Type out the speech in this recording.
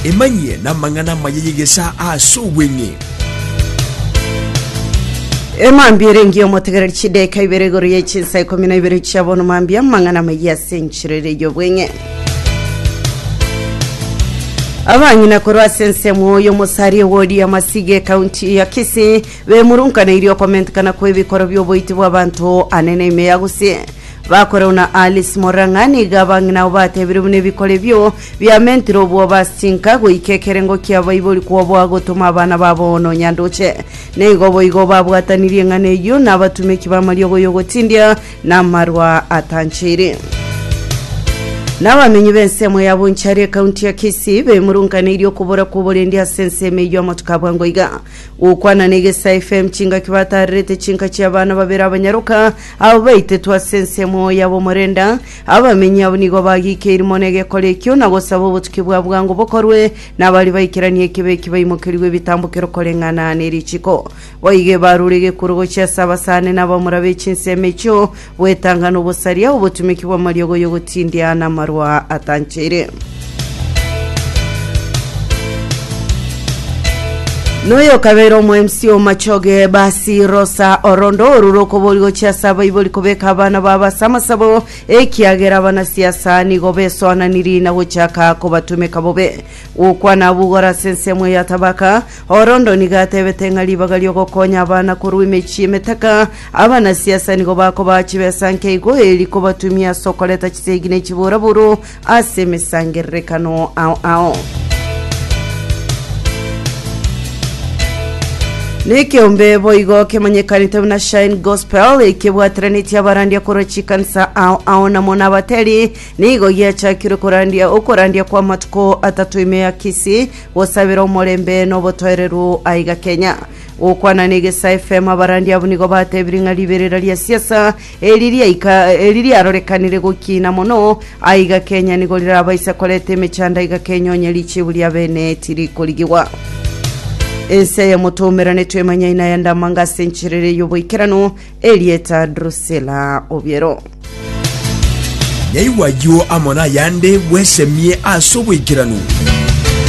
Emanyie namang'ana amaya y'egesaa ase obweng'e. Emambia ere engiya omotegereri chideka ibere igoro ye chinsa ikomi na ibere chia bono mambia amang'ana amaya ase enchero ere y'obweng'e abang'ina korwa ase ensemo oyo omosaria ewodi amasiga ekaunti ya kisii bemurunkaneirie okomentekana kw'ebikoro by'oboiti bw'abanto ane na ime ya gusii Bakore buna Alice Morang'a, nigo abang'ina abo batebire buna ebikoro ebio biamentire obwoba ase chinka, goika ekerengo kia baibori kwoboa gotoma abana babo bono Nyandoche. Nigo boigo babwatanirie eng'ana eyio nabatumeki b'amariogo y'ogotindia na amarwa atanchaire. Nabamenyi b'ensemo ya Bonchari ekaunti ya Kisii bemurunkaneirie okobora kw'oborendi ase ensemo eyio amatuko a bwango iga. Gokwana na Egesaa FM chingaki batarerete chinka chi'abana babere abanyaroka Aba baitetwe ase ensemo y'abomorenda, abamenyi abwo nigo bagiikeiri mono egekora ekio, na gosaba obotuki bwa bwango bokorwe, na baria baikeranie ekibe eki baimokerigwe ebitambokero koreng'ana ne richiko. Boigo ebarure egekuro gochia ase abasani na abamura be chinsemo echio, bwetang'ana obosaria, obotumeki bw'amariogo y'ogotindia, na amarwa atanchaire. Noyo okabeire omoemsi o machoge basi rosa orondo orure okobori gochia ase abaibori kobeka abana babo ase amasabo ekiagera abana siasa nigo besoananiri na gochaka kobatumeka bobe gokwana abugora ase ensemo ya tabaka orondo nigo atebete ng'a ribaga riogokonya abana korwa emechie emetaka abana siasa nigo bakobaha chibesa nkeigo eri kobatumia ase okoreta chisegi ne chiburaburu ase emesangererekano ao ao. Nekeombe boigo kemanyekanete buna Shine Gospel ekebwateranetie abarandia korwa chikanisa ao ao namo nabateri nigo giachakirwe korandia okorandia kwa matuko atato ime ya Kisii gosabera omorembe nobotoereru aiga Kenya gokwana na egesa FM abarandia abwo nigo batebirie ng'a riberera ria siasa Eri riaika eri riarorekanire gokiina mono, aiga Kenya nigo rirabaisa koreta emechando aiga Kenya onye richibu ria bene tirikorigiwa. Ense ya Motomera netwemanya ina ya Ndamanga ase encherere y'oboikeranu erieta Drusilla Obiero. Nyaigwa ayio amo nayande bwesemie ase oboikeranu.